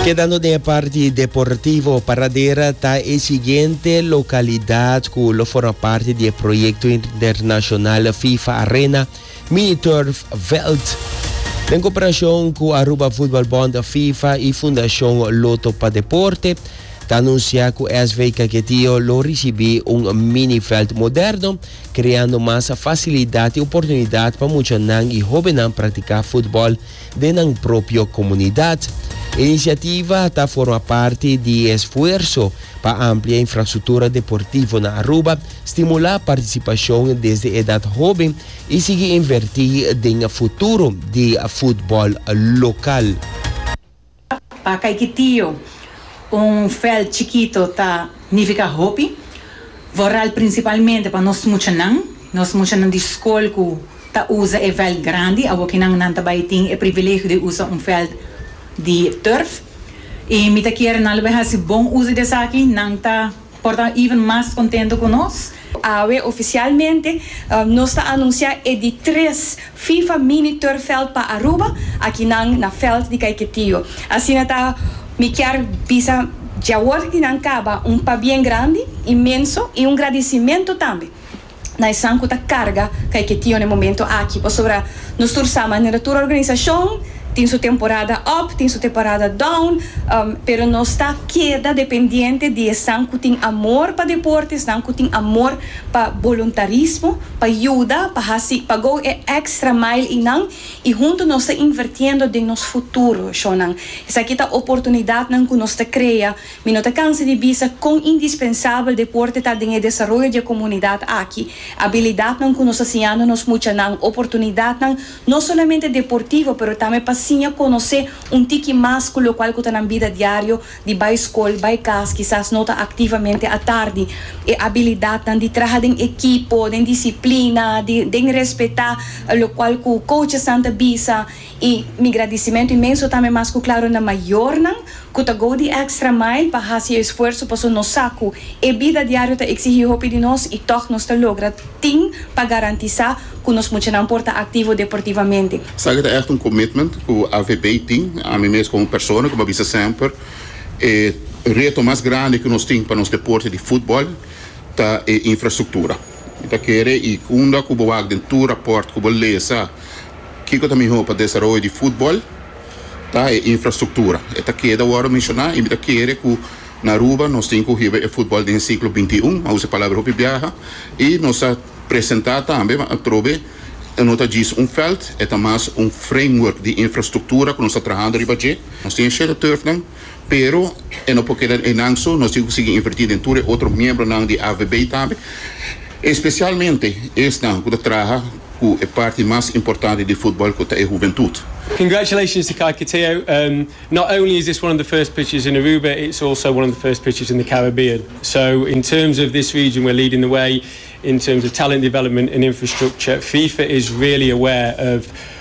Kedando den e parti deportivo, Paradera ta e siguiente lokalidad ku lo forma parti di e proyekto internashonal FIFA Arena Mini Turf Veld den koperashon ku Aruba Voetbalbond, FIFA i Fundashon Lotto pa Deporte ta anunsiá ku SV Kaketio lo risibí un mini veld moderno, kreando mas fasilidat i oportunidat pa muchanan i hóbennan praktiká futbòl. den nan propio komunidat. E inisiativa ta forma parti di e esfuerso pa amplia infrastruktura deportivo na Aruba, stimulá partisipashon desde edat hóben i sigui invertí den futuro di futbòl lokal. Pa Kaikitiyo, un veld chikito ta nifiká hopi, vooral prinsipalmente pa nos muchanan. Nos muchanan di skol ku ta usa e veld grandi awokinan nan ta bai tin e privilegio di usa un veld di turf. I mi ta kere nan lo bai hasi bon uso di esaki, nan ta Por ta even mas contento cu nos. Awe oficialmente nos ta anuncia e di tres FIFA Mini Turfveld pa Aruba, aki nan na veld di Caiquetío. Asina ta mi kier bisa diawor di nan caba un pabien grandi, inmenso y un gradicimento tambe. na esan cu ta carga ca e ketio na e momento aki, pasobra nos tur sa manera tur organisacion tin su temporada up, tin su temporada down, pero nos ta keda dependiente di esan cu tin amor pa deporte, esnan cu tin amor pa boluntarismo, pa yuda, pa haci, pa go e extra mile eynan y hunto nos ta invertiendo den nos futuro, eshonan. Esaki ta oportunidadnan cu nos ta crea. Mi no ta cansa di bisa con indispensabel deporte ta den e desaroyo di e comunidad aki. Abilidadnan cu nos ta siñando nos muchanan, oportunidadnan no solamente deportivo pero tambe pa siña conoce un tiki mas cu locual cu ta nan bida diario di bay scol, bay cas, kisas no ta activamente atardi. E abilidadnan di traha den ekipo, den disciplina, di den respeta locual cu coachesnan ta bisa Y mi gradicimento inmenso tambe mas cu claro na mayornan cu ta go di extra mile pa haci e esfuerzo paso nos sa cu e bida diario ta exigi hopi di nos y toch nos ta logra tin pa garantisa cu nos muchanan por ta activo deportivamente. Esaki ta echt un commitment cu AVB tin. Ami mes como persona como a bisa semper e reto mas grandi cu nos tin pa nos deporte di football ta e infrastructura. Mi ta kere y unda cu bo wak den tur rapport cu bo lesa, Kiko ta mihó pa desaroyo di futbòl? Ta e infrastruktura. E ta keda wòrdu menshoná i mi ta kere ku na Aruba nos tin ku hiba e futbòl den e siglo bintiún, a usa e palabra hopi biaha, i nos ta presentá tambe ma atrobe e no ta djis un vèlt, e ta mas un framework di infrastruktura ku nos ta trahando riba dje. Nos tin e Shedderturfnan, Pero e no por keda den eynan so, nos tin cu sigui inverti den tur e otro miembronan di AVB tambe, especialmente esnan cu ta traha cu e parti mas importante di futbal cu ta e huventud. Congratulations to Kaki Teo, not only is this one of the first pitches in Aruba, it's also one of the first pitches in the Caribbean, so in terms of this region we're leading the way in terms of talent development and infrastructure, FIFA is really aware of